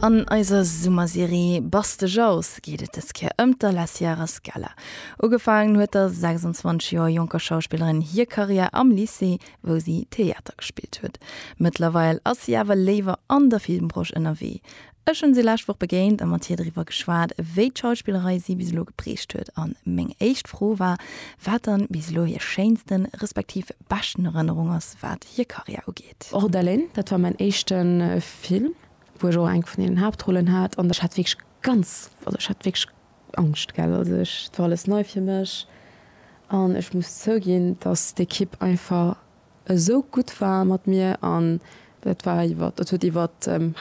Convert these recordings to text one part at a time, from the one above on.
An eiser Summerserie Baste Jaus geet et dës Kéier ëm d'Alessia Sierra Scala. Ugefaangen huet der 26 Joer jonker Schauspillerin hir Karriär am Lycée, wou si Theater gespillt huet. Mëttlerweil ass si awer léiwer an der Filmbranche ënnerwee. Ech hunn si lescht Woch begéint a mat hir driwwer geschwat, wéi d'Schauspillerei si bis elo geprägt huet. A meng éischt Fro war, wat dann bis elo hir schéinsten, respektiv beschten Erënnerung ass, wat hir Karriär ugeet. Projekt. Och Delaine, dat war mäin éischte Film, wou ech och eng vun deenen Haaptrollen hat, an ech hat wierklech ganz, also ech hat wierklech Angscht, gell. Also ech, et war alles nei fir mech an ech muss zouginn, dass d'Ekipp einfach esou gutt war mat mir an dat war iwwert, dat huet iwwer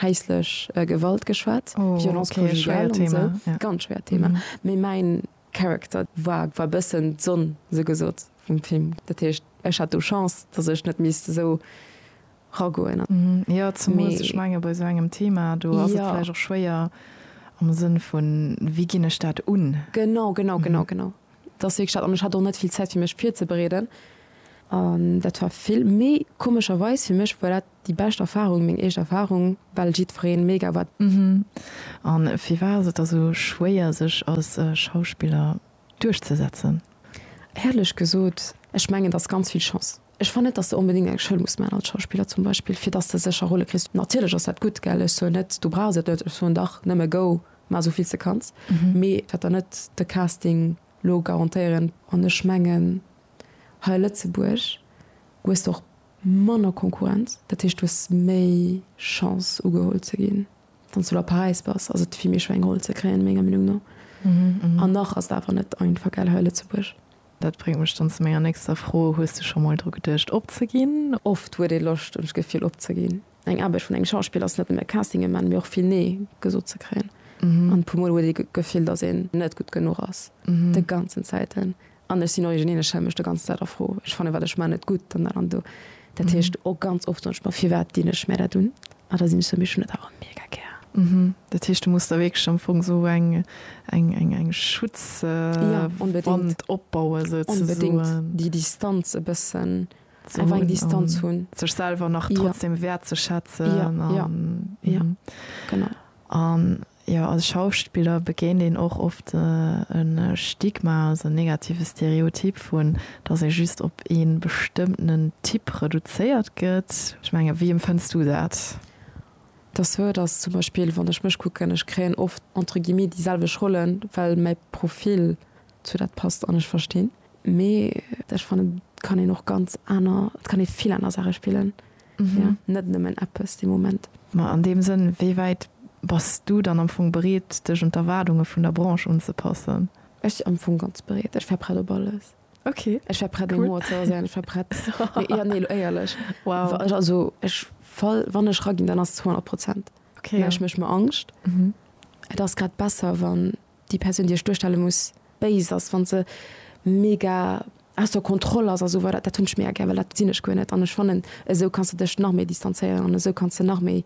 häislech Gewalt geschwat, Violence conjugale an esou, ganz schwéiert Thema, mee mäin. Character war war bëssen d'Sonn sou gesot vum Film. Dat heescht ech hat do Chance dass ech net misst esou ragoen. Jo zemools ech menge bei sou engem Thema do ass et vläicht och schwéier am Sënn vun wéi ginn ech dat un? Genau genau genau genau dat ass wierklech dat an ech hat och net vill Zäit fir mech virzebereeden an dat war vill méi komescherweis fir mech war dat Déi bescht Erfahrung, meng eescht Erfahrung, well jiddfereen mega war. An firwat ass et da sou schwéier sech als Schauspiller duerchzesetzen? Éierlech gesot, ech mengen et ass ganz vill Chance. Ech fannen net dass de onbedingt eng Schoul muss man als Schauspiller zum Beispill fir dass de sécher Rolle kriss. Natierlech ass dat gutt, gell, ech soen net du brauchs et net, ech soen dach nëmme go mar sou vill s de kanns, mee et wäert der net de Casting lo garantéieren. An ech mengen hei a Lëtzebuerg hues de och Manner Konkurrenz, dat heescht du hues méi Chance ugeholl ze ginn, wann s du lo a Paräis bass ass et vill méi schwéier eng Roll ze kréien, menger Meenung no. An nach ass et awer net einfach, gell, hei a Lëtzebuerg. Dat bréngt mech dann zu menger nächster Fro, Hues du scho mol dru geduecht opzeginn? Oft huet ee Loscht, hunn ech d'Gefill, opzeginn. Eng Aarbecht vun engem Schauspiller ass net nëmme Castinge man, mee och vill Nee gesot ze kréien. An e puer Mol huet ee d'Gefill, datt een net gutt genuch ass, de ganzen Zäiten. An ech sinn origineel, ech stelle mech do ganz Zäit a Fro. Ech fannen, wat ech man, net gutt an dat an do. Dat heescht, och ganz oft soen ech mer, firwat dinn ech mär dat un? A da sinn ech sou, mee ech hunn dat awer mega gär. Dat heescht, du muss da wierklech am Fong sou eng Schutzwand opbauen, souzesoen. Jo, onbedéngt. Déi Distanz e bëssen, einfach eng Distanz hunn. Sech selwer nach trotzdem wäertzeschätzen. Jo, jo, jo, genau. An Jo, als Schauspiller begéint een och oft e Stigma, also en negative Stereotyp vun, dass ee just op ee bestëmmtenen Typ reduzéiert gëtt. Ech mengen, wéi empfënns du dat? Dass sou et ass, zum Beispill wann ech mech kucken, ech kréien oft entre guillemets déi selwecht Rollen, well mäi Profil zu dat passt an ech verstinn, mee ech fannen et kann een och ganz aner, et kann ee vill aner Saache spillen. ja net nëmmen eppes dee Moment. Ma an deem Sënn, wéi wäit bass du dann am Fong bereet, dech un d'Erwaardunge vun der Branche unzepassen? Ech am Fong ganz bereet. Ech war prett op alles. Okay, cool. Ech war prett, Humor ze erséien, ech war prett, jo, nee, elo éierlech, also ech fall, wann ech raginn, dann ass et 200 Prozent, mä ech méch mer Angscht. Et ass grad besser, wann déi Persoun déi ech duerstelle muss béis ass, wann se mega aus der Kontroll ass a sou weider, dat hunn ech mega gär, well dat sinn ech guer net an ech fannen esou kanns de dech nach méi distanzéieren an esou kanns de nach méi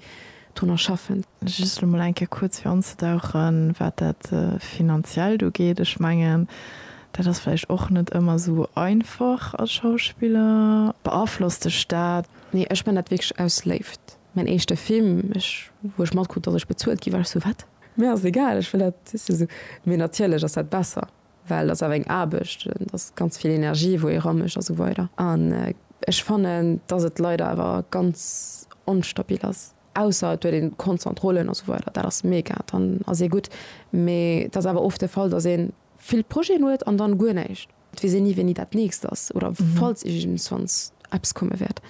drunner schaffen. Just lo mol eng Kéier kuerz fir anzedauchen, wat dat Finanziellt ugeet. Ech mengen, dat ass vläicht och net ëmmer esou einfach als Schauspiller. Beaflosst dech dat? Nee, ech man dat wierklech aus Léift. Mäin éischte Film, ech wou ech matkrut, datt ech bezuelt gi war, ech sou, wat? Mir ass egal, ech wëll dat just esou. Mee natierlech ass dat besser, well et ass awer eng Aarbecht, et ass ganz vill Energie wou ee ramécht a sou weider. An ech fannen, dass et leider awer ganz onstabil ass, ausser et huet een konstant Rollen a sou weider, dat ass mega, dann ass ee gutt. Mee et ass awer oft de Fall, dass een. vill Projeten huet an dann guer näischt. Et weess een ni wéini dat nächst ass oder falls iergendswanns eppes komme wäert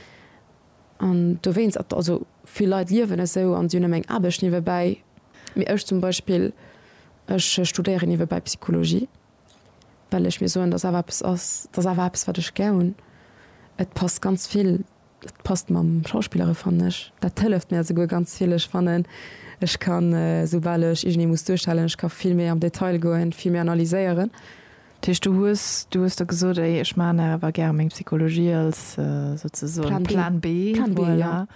an dowéinst et also vill Leit liewen esou an si hunn nëmme eng Aarbecht niewebäi mee ech zum Beispill ech studéieren niewebäi Psychologie well ech mir soen dass awer eppes ass dass awer eppes wat ech gär hunn et passt ganz vill Dat passt mam Schauspillere fannen ech. Dat hëlleft mir esouguer ganz vill. Ech fannen ech ka soubal ech iergendee muss duerstellen, ech ka vill méi am Detail goen, vill méi analyséieren. Dat heescht du hues, du hues der gesot, ey ech maachen nach awer gäre meng Psychologie als souzesoen Plan B, voilà,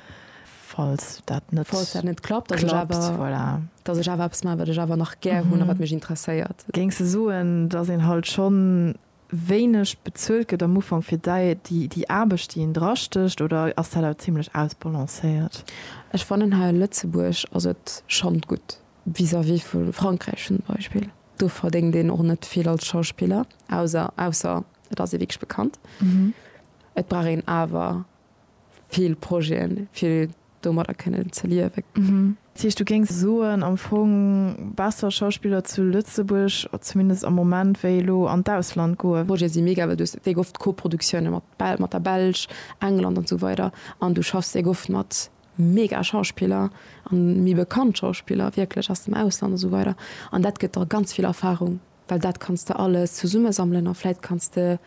falls dat net klappt. Falls dat net klappt, dass ech awer, voilà, dass ech awer eppes maachen wat ech awer nach gär hunn a wat mech interesséiert. Géings de soen, dass een halt schonn wéineg bezuelt gëtt am Ufank fir déi Aarbecht, déi een drastécht, oder ass dat awer zimmlech ausbalancéiert? Ech fannen hei a Lëtzebuerg ass et schonn gutt vis-à-vis vu Frankräich zum Beispill. Do verdéngt een och net vill als Schauspiller, auser ausser et ass ee wierklech bekannt. Et brauch een awer vill Projeten, vill domadder kënnen ze liewen. Dat heescht, du géings soen, am Fong besser Schauspiller zu Lëtzebuerg, zumindest am Moment, wéi elo an d'Ausland goen? D'Projete si mega, well du hues wéi oft Koproduktiounen mat Bel mat der Belsch, England an esou weider an du schaffs wéi oft mat mega Schauspiller an méi bekannt Schauspiller wierklech aus dem Ausland an esou weider an dat gëtt der ganz vill Erfahrung. Well dat kanns de alles zesummesammelen a vläit kanns de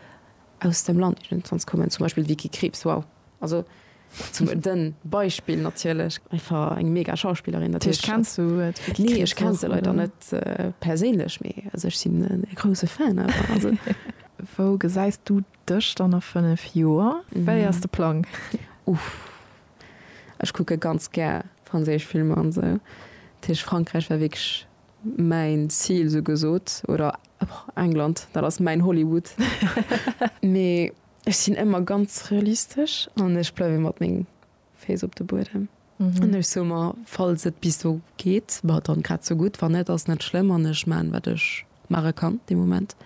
aus dem Land iergendwanns kommen, zum Beispill d'Vicky Krieps, wow, also zum de Beispill natierlech. Einfach eng mega Schauspillerin. Dat heescht, kenns du d'Vicky Krieps? Nee, ech kenn se leider net perséinlech, mee also ech sinn e grousse Fan einfach. Wou gesäis du dech dann a fënnef Joer? Wéi ass de Plang? Uff, ech kucke ganz gär franséisch Filmer an esou, dat heescht Frankräich war wierklech Mäin Zil sou gesot, oder England, dat ass mäin Hollywood. Mee ech sinn ëmmer ganz realistesch an ech bleiwe mat menge Féiss op de Buedem. An ech soe mer, falls et bis do geet, bah dann grad sou gutt, wann net, ass net schlëmm an ech maachen, wat ech maache kann dee Moment.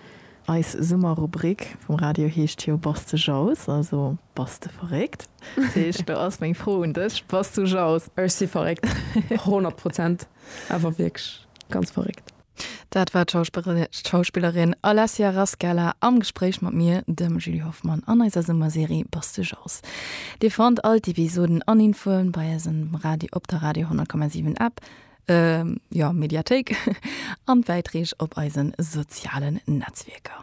Eis Summerrubrik vum Radio heescht jo Bass de jaloux? Also bass de verréckt? Dat heescht, do ass meng Fro un dech, Bass du jaloux? Ech si verréckt, honnert Prozent. Awer wierklech ganz verréckt. Dat war d'Schauspillerin Alessia Rascala am Gespréich mat mir, dem Julie Hoffmann, an eiser Summerserie Bass de Jazz. Dir fannt all d'Episoden an Infoen bei eis um Radio, op der Radio 10,7 App, jo, Mediathéik, an d'Bäitreeg op eisen sozialen Netzwierker.